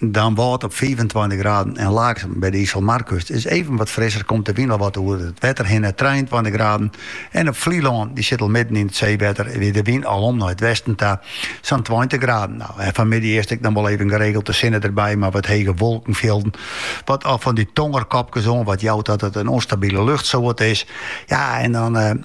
Dan wâld op fiifentweintich graden en Laaksum by de Iselmarkust is even wat frisser, komt de wyn al wat oer it wetter hinne trijeentweintich graden. En op Flylân, dy sit al midden yn it seewetter, wie de wyn al om nei it westen ta, sa'n tweintich graden. Nou, en fanmiddei earst ek noch wol even geregelte sinne derby mei wat hege wolkenfjilden, wat al fan dy tongerkopkes wat oanjout dat it in ûnstabile luchtsoarte is. Ja, en dan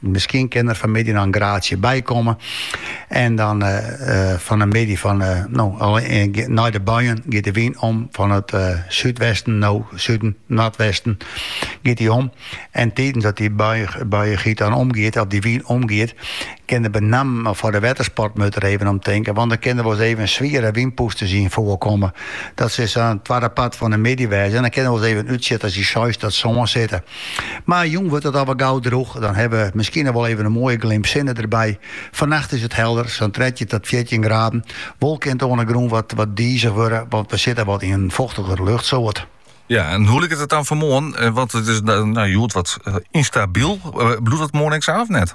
Miskien kin der fanmiddei noch in graadsje by komme. En dan fan de middei fan, no, nei de buien giet de wyn om fan it súdwesten, no suden, noardwesten, giet dy om. En tidens dat dy bui giet dan omgiet, of dy wyn omgiet, kin der benammen foar de wettersport moatte we even om tinke, want dan kin der wol ris even swiere wynpûsters yn foarkomme. Dat sil sa yn it twadde part fan de middei wêze en dan kin der wol ris even in útsjitter by seis oant sân sitte. Mar jûn wurdt it al wer gau drûch, dan hawwe we miskien noch wol even in moaie glimp sinne derby. Fannacht is it helder, sa'n trettjin tot fjirtjin graden. Wol kin it oan de grûn wat dizich wurde, want we sitte wat yn in fochtiger luchtsoart. Ja, en hoe liket it dan foar moarn? Want it is hjoed wat ynstabyl. Bliuwt dat moarn ek sa of net?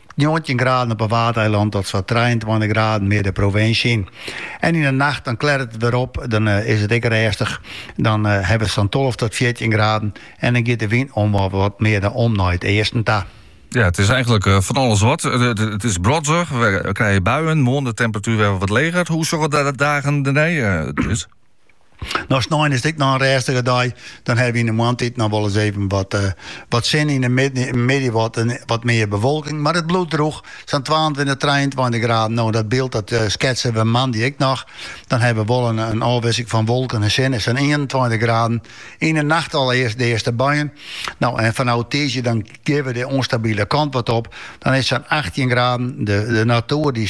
Njoggentjin graden op 'e Waadeilannen tot sa'n trijeentweintich graden mear de provinsje yn. En yn 'e nacht dan klert it wer op, dan is it ek rêstich. Dan hawwe we sa'n tolve tot fjirtjin graden en dan giet de wyn om wol wat mear de om nei it easten ta. Ja, it is eigentlik eh, fan alles wat. Eh, it is brodzich, we krije buien. Moarn de temperatuer wer wat leger. Hoe sjogge de dagen dernei? Eh, it is... No snein is it ek noch in rêstige dei. Dan hawwe we yn de moandtiid noch wol ris even wat, eh, wat sinne. Yn de middei wat, eh, wat mear bewolking, mar it bliuwt drûch. Sa'n 22, 23 graden. No, dat byld dat, eh, sketse we moandei ek noch. Dan hawwe we wol in, in ôfwisseling fan wolken en sinne. Sa'n 21 graden. Yn de nacht al earst de earste buien. No, en fanôf tiisdei dan gean we de ûnstabile kant wat op. Dan is sa'n 18 graden. De, de natoer die